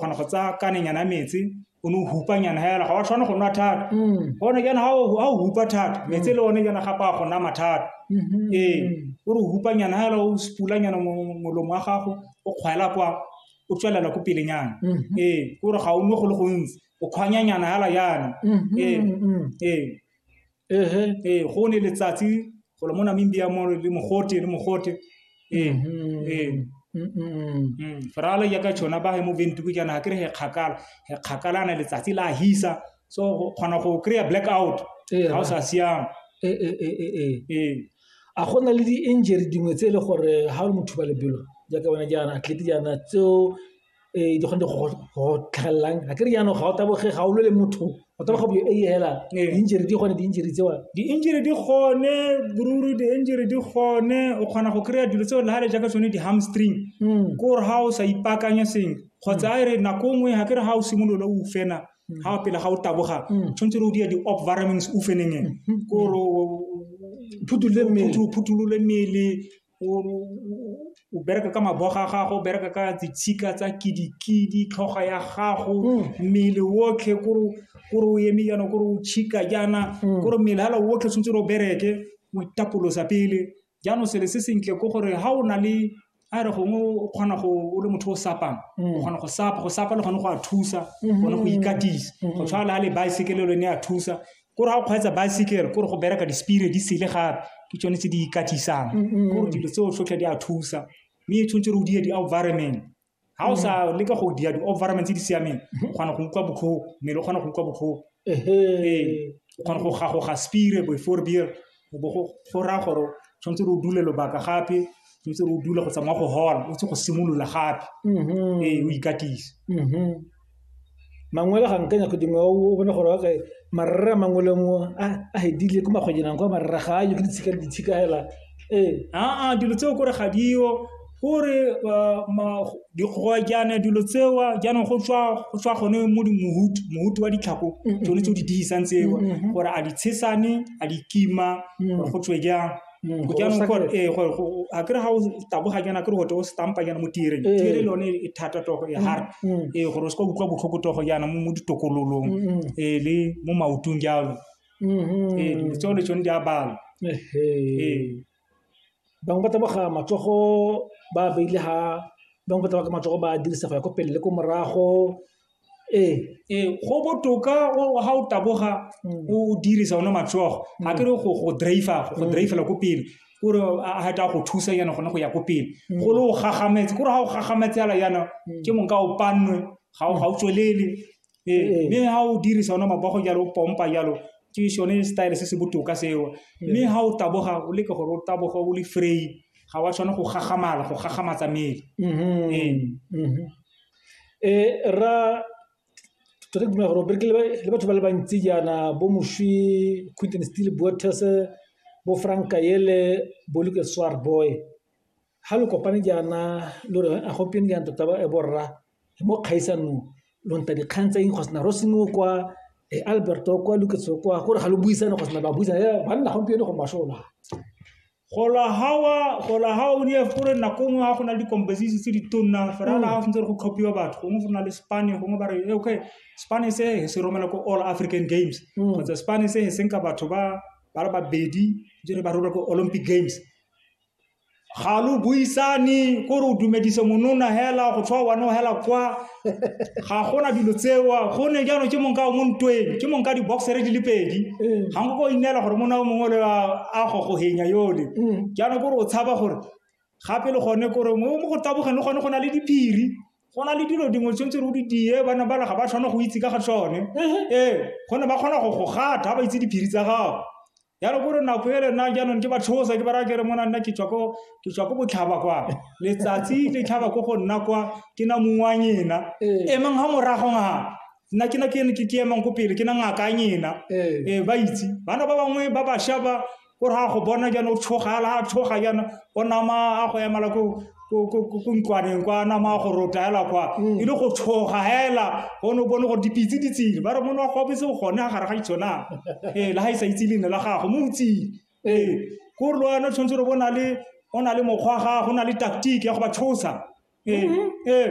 kgona go tsaya kanenyana metsi o ne o hupa nyana hela ga wa tshwana go nwa thata mm. gone jaana ga o hupa thata metsi le one jaana gape a go nama thata mm-hmm. ee o re o hupa nyana hela o sepula nyana molomo wa gago o kgwela kwa o tswelela ko pelenyana mm-hmm. ee o re ga o nwe go le gontsi o kgwanya nyana hela yana mm-hmm. ee ee ehe ee go ne letsatsi go le mo namibia mo le mogote le mogote ee Mhm. ee Mm, mm, mm. Mm, feralo ya ka tšhona ba he mo ventuku jaana ga kry he kgakala he kgakalana letsatsi la hisa so go kgona go kry-a black out Ee, ga o sa siama Ee, ee, ee, ee, ee. ee a go na le di-injury dingwe tse e le gore ga o le motho ba lebelo jaaka wena jaana atlete jaana tseo ee di kgone go tlhagelelang ga ke re jaanong ga o taboge ga o lwe le motho o taboga bo e hela ee. di-injury di gone di-injury tsewa di-injury di gone boruri di-injury di gone o kgona go kry-a dilo tseo le ga le jaaka tsone di-hamstring hmm. ke gore ga o sa ipaakanya seng kgotsa a e re nako nngwe ga ke re ga o simolola o fena ga hmm. o pele ga o taboga hmm. tshwanetse re o dia di-op varamings o fenengeng ke gore phutulole mmele o bereka ka mabogo a gago, o bereka ka ditshika tsa kidikidi, tlhogo ya gago, mm. mmele otlhe kore o eme jaana, kore o chika jaana, mm. kore mmele hala otlhe tshwanetse o bereke, o itapolosa pele. Jaanong sele se sentle ke gore ha o na le a re gongwe o kgona go o le motho o sapang o mm. kgona go sapa go sapa le gone go a thusa mm-hmm. gone go ikatisa mm-hmm. go tshwana le ga le baesekele lone a thusa kore ga o kgweetsa baesekere kore go bereka di-speed di sele gape ke tsone tse di ikatisang kore dilo tseo tlhotlhe di a thusa mme e tshwanetse re o diya di-overman ga o sa leka go diya di-overman tse di siameng o kgona go utlwa botlhoko mmele o kgona go utlwa botlhoko ee o kgona go gagoga speed before beer go raya gore tshwanetse re o dule lobaka gape tshwanetse re o dule go tsamaya go hola o tse go simolola gape mm-hmm. ee o ikatise mm-hmm. mangwele ga nkanya go dingwe o bone gore okay marere a mangwele mo a hedile ko makgwejenang kwa marere ga a yo ke ditshika le ditshika fela ee aa dilo tseo kore ga dio gore jaana dilo tseo jaanong go tswa gone mo mohutu mohutu wa ditlhako tsone tse o di dirisang tseo gore a di tshesane a di kima gore go tswe jang jaanong gore ee gore a kere ga o taboga jaana kere gote o stampa jaana mo tireng tire le yone e thata togo e hard ee gore o se ka utlwa botlhoko togo jaana mo ditokololong ee le mo maotong jalo ee tsone tsone di a bala ee Bangwe ba taboga matsogo ba beile ha, bangwe ba taboga matsogo ba dirisa go ya ko pele le ko morago. Ee, ee go botoka ga o taboga mm. o dirisa one matsogo mm. a kere go go drive go mm. drive la ko pele kore a heta go thusa yana gone go ya ko pele go le o gagametse kore ga o gagametse ala yana ke mong ka o pannwe ga o tswelele ee mme ha o dirisa ona mabogo jalo o pompa jalo ke sone style se se botoka seo mme ha o taboga o leke gore o taboga o le free ga wa tshwana go gagamala go gagamatsa mmele um ra tota ke dumela gore o bereke le batho ba le bantsi jaana bo moswi quinton steel boates bo franka ele bo luke swar boy ga lo kopane jaana lo re a gompieno jaana tota borra mo kgaisanong lo nta dikgang tse eng go sena rosenoe kwa e alberto kwa luketso kwa gore ga lo buisane go sena ba buisana ya banna gompieno go mashola gola hawa gola hawa o ne gore nako nngwe ga go na le di-composition tse di tonna fela ga go ntse go tlhophiwa batho gongwe go na le spane gongwe ba re okay spane se se romela ko all african games kgotsa spane se se nka batho ba ba le babedi jere ba romela ko olympic games ga lo buisane ko re o dumedise monona hela go tshwa wane o hela kwa ga gona dilo tsewa gone jaanong ke mong ka o mo ntweng ke mong ka di-boxere di le pedi mm. ga nko ko ineela gore mona o mongwe le a gogogenya yole mm. jaanong kore o tshaba gore gape le gone kore mo go tabogeng le gone go na le diphiri go na le dilo dingwe tshwanetse re o di die bana bana ga ba tshwane go itse ka ga tsone mm-hmm. ee gone ba kgona go go gata ga ba itse diphiri tsa gago ya re gore nako e lena jaanong ke ba tshosa ke ba raya kere mona nna ke tswa ko ke tswa ko botlhaba kwa letsatsi le tlhaba ko go nna kwa ke na mong wa nyena Ee. emang ga morago nga nna ke na ke ne ke ke emang ko pele ke na ngaka ya nyena Ee. ee ba itse bana ba bangwe ba bašwa ba gore ga go bona jaana o tshoga la a tshoga jaana o nama a go emala ko ko- ko ko- ko ntlwaneng kwa nama go rotaela kwa Mm. e le go tshoga hela o ne o bone gore dipitse di tsile ba re mone wa go bese gone ga gare ga ditshonang ee le ga e sa itse leina la gago mo o tsile ee ko re le wena o tshwanetse gore bo na le o na le mokgwa wa gago o na le tactic ya go ba tshosa ee ee